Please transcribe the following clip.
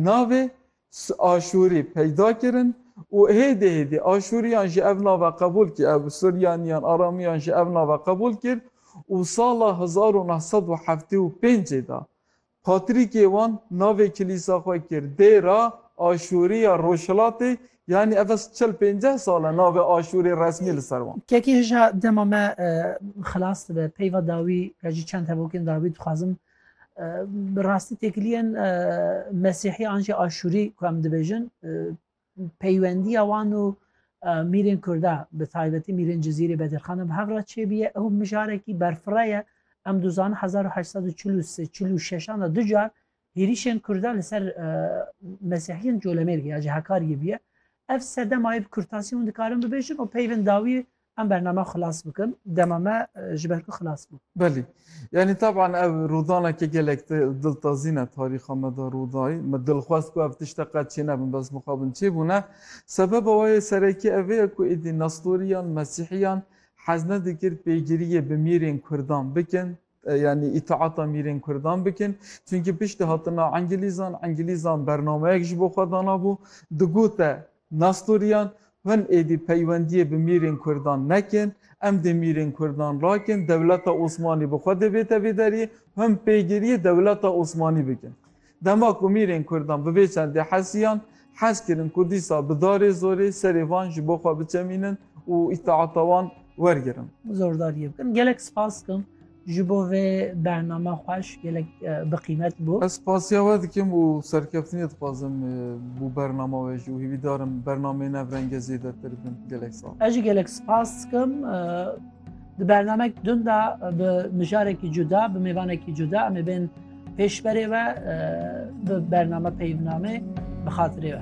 Navê Aşûrî peyda kirin û hêdî hêdî Aşûriyan jî ev nava qebûl kir, ev Suryaniyan, Aramiyan jî ev nava qebûl kir û sala hezar û neh sed û heftê û pêncê de patrîkê wan navê kilîsa xwe kir Dêra Aşûrî ya Rojhilatê, yanî ev ez çil pênceh sal e navê Aşûrî resmî li ser wan. Kekê hija dema me xilas dibe peyva dawî ya jî çend hevokên dawî dixwazim Bi rastî têkiliyên mesîhî an jî aşûrî ku em dibêjin peywendiya wan û mîrên Kurda bi taybetî mîrên Cizîrê Bedîrxana bi hev re çêbiye ew mijarekî berfira ye em duzan 1846 de du car hêrîşên Kurda li ser mesîhiyên colemêrg ya cihekar ye biye ev sedema ev kurtasî hûn dikarin bibêjin û peyvên dawî Em bername xilas bikin. Dema me ji ber ku xilas bû. Belê. Yanî taban ev rûdaneke gelek diltazîn e tarîxa me de rûdayî. Me dilxwest ku ev tişte qet çênebin bes mixabin çêbûne. Sebeba wê yê serekî ev ye ku êdî nestoriyan, mesîhiyan hez nedikir pêgiriyê bi mîrên kurdan bikin. Yanî îtiata mîrên kurdan bikin. Çunkî piştî hatina engilîzan, engilîzan bernameyek ji bo xwe danabû, digote nestoriyan, Hûn êdî peywendiyê bi mîrên kurdan nekin, em dê mîrên kurdan rakin, dewleta Osmanî bi xwe dê bête vê deriyê, hûn pêgiriyê dewleta Osmanî bikin. Dema ku mîrên kurdan bi vê çendê hesiyan, hez kirin ku dîsa bi darê zorê serê van ji bo xwe biçemînin û îtaata wan wergirin. Zordariyê bikin. Gelek spas dikim ji bo vê bername xweş, gelek bi qîmet bû. Ez spasiya we dikim û serkeftinê dixwazim bo bernama we jî û hîvîdar im bernameyên ev renge zêdetir bin. Gelek sal. Ez jî gelek spas dikim. Di bernamek din de bi mijarekî cuda, bi mêvanekî cuda em ê bên. Pêşberê ve bi bername peyvname bi xatirê ve.